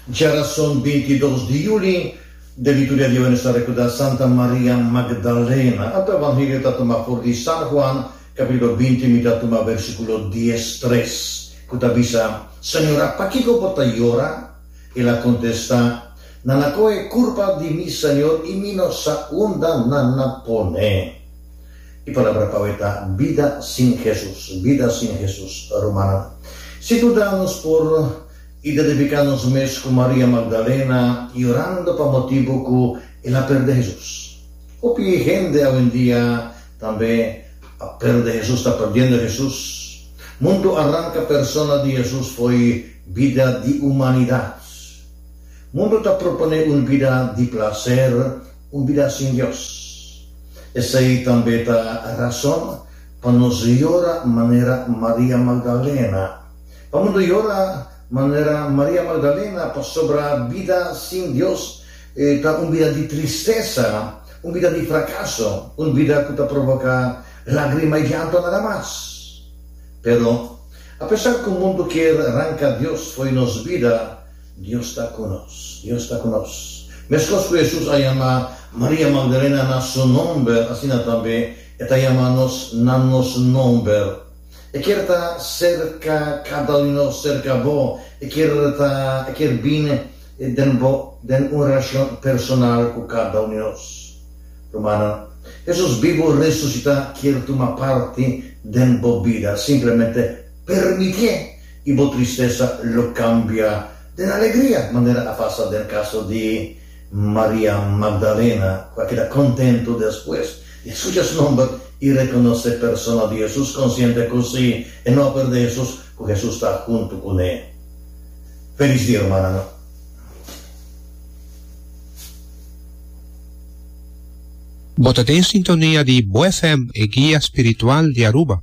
Djarason bintidos di juli den lituria di awe nos ta rekuda Santa Maria Magdalena. Anto Evangelio ta tuma for di San Juan kapitulo binti mi ta tuma versikulo dies tres ku ta bisa, Señora, pakiko bo ta yora? El a kontesta, Nan a kohe kurpa di mi Señor i mi no sa unda nan na pone. E palabra pa awe ta bida sin Hesus, bida sin Hesus. Rumannan, si buda nos por identifiká nos mes ku Maria Magdalena yorando pa motibu ku el a pèrdè Hesus. Hopi hende awendia tambe a pèrdè Hesus, ta pèrdiendo Hesus. Mundu a ranka persona di Hesus fo'i bida di humanidat. Mundu ta proponé un bida di plaser, Un bida sin Dios. Esei tambe ta rason pa nos yora manera Maria Magdalena. Pabia bo ta yora manera Maria Magdalena? Pasobra bida sin Dios ta un bida di tristesa, un bida di frakaso, un bida ku ta provoká lágrima i llanto nada mas. Pero, apesar ku mundu kier ranka Dios fo'i nos bida, Dios ta ku nos. Dios ta ku nos. Meskos ku Hesus a yama Maria Magdalena na su nòmber, asina tambe e ta yama nos na nos nòmber. E kier ta serka kada un di nos, serka bo. E kier ta, e kier bini den bo, den un relashon personal ku kada un di nos. Rumannan, Hesus bibu resusitá kier tuma parti den bo bida. Simplemente permitié. I bo tristesa lo cambia den alegria, manera a pasa den caso di Maria Magdalena, cu a keda contento despues di a scucha su nomber i reconoce e persona di Jesus, consciente cu si e no a perde Jesus, cu Jesus ta hunto cu ne. Feliz dia, hermananan! Bo ta den sintonia di Bo FM, e guia spiritual di Aruba.